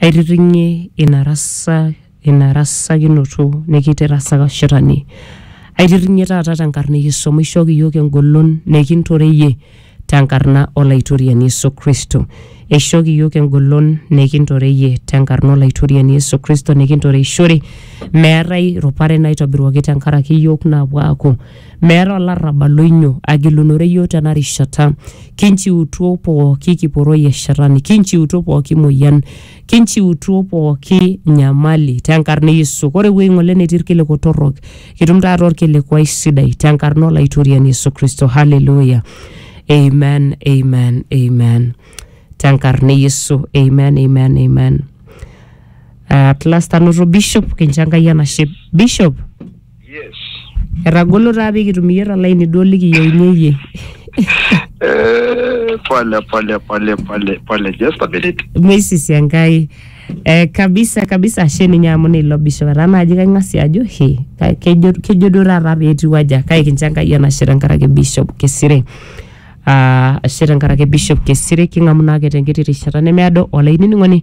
Aitiring'ie ina rasa ina rasakinoto nikitirasaka shetani. Aitiring'ie taata tenkarna e Yesu amu ishooki iyiook engolon nikintoreyie tenkarna Olaitoriani Yesu Kristo. Eishooki iyiook engolon nikintoreyie tenkarna Olaitoriani Yesu Kristo nikintoreishore meetae rupare naitobiruaki tenkaraki iyiook naapuo aaku Meeta olarrabal oinyo agilunore iyiook tena rishata. Kinchiutuo pooki kiporoi e shetani, kinchiutuo pooki moyian, kinchiutuo pooki nyamali tenkarna e Yesu. Ore ewueji ng'ole netii irkiliku torrok, kitum taata orkilikuai sidai tenkarna Olaitoriani Yesu Kristo. Hallelujah. Amen, amen, amen. Tenkarna e Yesu. Amen, amen, amen. At last anoto Bishop, kincho Enkai enashe. Bishop. Etagolo taa pee kitum iyie tolaini duo likiyieunye iyie. Eh, pole pole pole pole pole just a minute Meisisi Enkai. Eh, kabisa kabisa ashe ninye amu neilo bishop etaa naaji kaing'asie ajo he ka- kejo kejo duo taata pee etiu aja kake kincho Enkai enashe tenkaraki bishop Kesire. Ah, ashe tenkaraki bishop Kesire king'amu naake tenkiti rishata nemeado olainining'oni